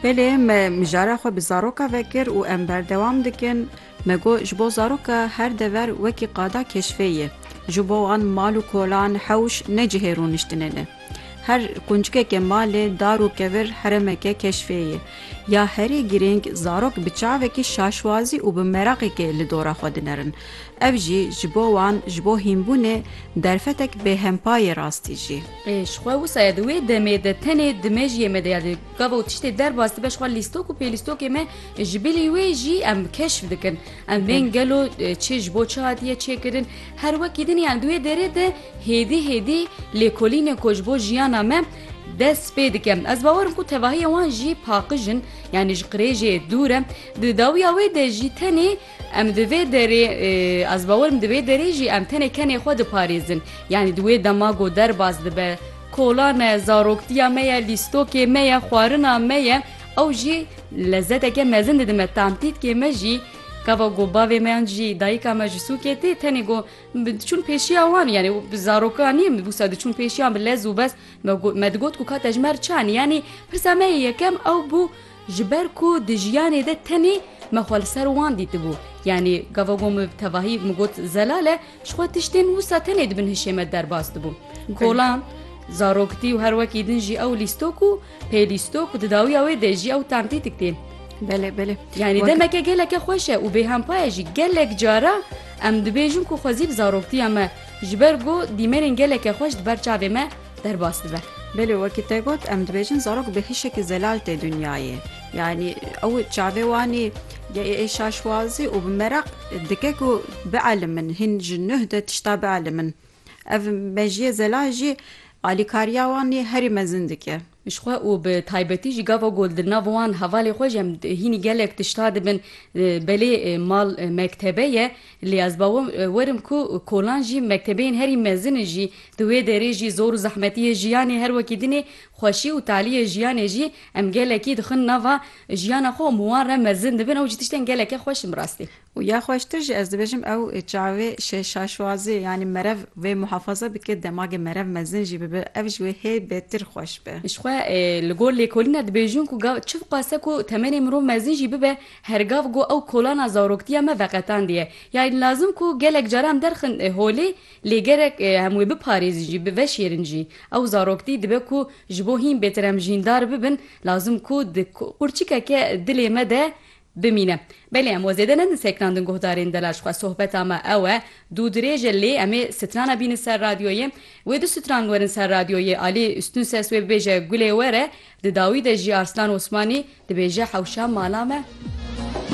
Belê me mijara xwe bi zaroka vekir û em berdewam dikin. Me got ji bo zaroka her dever wekî qada keşfê ye. Ji bo wan mal û kolan, hewş ne cihê rûniştinê ne. Her quncikeke malê, dar û kevir heremeke keşfê ye. Ya herî girîng zarok bi çavekî şaşwazî û bi meraqekê li dora xwe dinerin. Ev jî ji bo wan ji bo hînbûnê derfetek bêhempayê rastî jî. Ji xwe wisa ye di wê demê de tenê di mejiyê me de ya di gava û tiştê derbas dibe ji xwe lîstok û pêlîstokê me ji bilî wê jî em keşf dikin em bên gelo çi ji bo çi hatiye çêkirin her wekî din yan di wê derê de hêdî hêdî lêkolînê ku ji bo jiyana me dest pê dike ez bawerim ku tevahiya wan jî paqijin yanî ji qirêjê dûre di dawiya wê de jî tenê Em di vê derê ez bawerim di vê derê jî em tenê kenê xwe diparêzin. Yanî di wê dema ku derbas dibe kola ne, zaroktiya me ye, lîstokê me ye, xwarina me ye, ew jî lezeteke mezin dide me. Tantîtkê me jî gava ku bavê me yan jî dayika me ji sûkê tê tenê ku diçûn pêşiya wan yanî zaroka nî min wisa diçûn pêşiyan bi lez û bez me digot ku ka tejmer çi anî yanî pirsa me yê yekem ew bû Ji ber ku di jiyanê de tenê me xwe li ser wan dîtibû. Yanî gava ku min bi tevahî min got zelal e, ji xwe tiştên wisa tenê di bin hişê me derbas dibû. Kolan, zarokitî û her wekî din jî ew lîstok û pê lîstok û di dawiya wê de jî ew tentîtîk tê. Belê, belê. Yanî demeke geleke xweş e û bêhempa ye jî. Gelek cara em dibêjin ku xwezî bi zaroktiya me ji ber ku dîmenên geleke xweş di ber çavê me derbas dibe. Belê wekî te got em dibêjin zarok bi hişekî zelal tê dinyayê yanî ew çavê wanî ê şaşwazî û bi meraq dike ku bielimîn hîn ji nuh de tişta bielimîn ev mejiyê zelal jî alîkariya wanî herî mezin dike. Ji xwe û bi taybetî jî gava ku di nav wan hevalê xwe jî em hînî gelek tişta dibin belê mal mektebe ye Lê ez bawer werim ku kolan jî mektebeyên herî mezin jî di wê derê jî zor û zehmetiyê jiyanê her wekî dinê xweşî û taliyê jiyanê jî em gelekî dixin nava jiyana xwe û min wan re mezin dibin ew jî tiştên geleke xweş in bi rastî. Û ya xweştir jî ez dibêjim ew çavê şaşwazê yanî merev wê muhafaza bike demagê merev mezin jî bibe ev ji wê hê bêtir xweş be. Ji xwe li gor lêkolîna dibêjin ku gav çi dixwase ku temenê mirov mezin jî bibe Her gav ku ew kolana zaroktiya me veqetandiye, yan lazim ku gelek caran derxin holê, lê gerek em wê biparêzin jî, biveşêrin jî. Ew zaroktî dibe ku ji bo hîn bêtir em jîndar bibin, lazim ku di qurçikeke dilê me de bimîne. Belê em we zêde nedin sekinandin guhdarên delal ji xwe. Sohbeta me ew e, dû dirêj e lê em ê sitrana bînin ser radyoyê. Wê du sitrang werin ser radyoyê, alî ûstun ses wê bibêje gulê were, Di dawî de jî Arslan Osmanî dibêje hewşa mala me.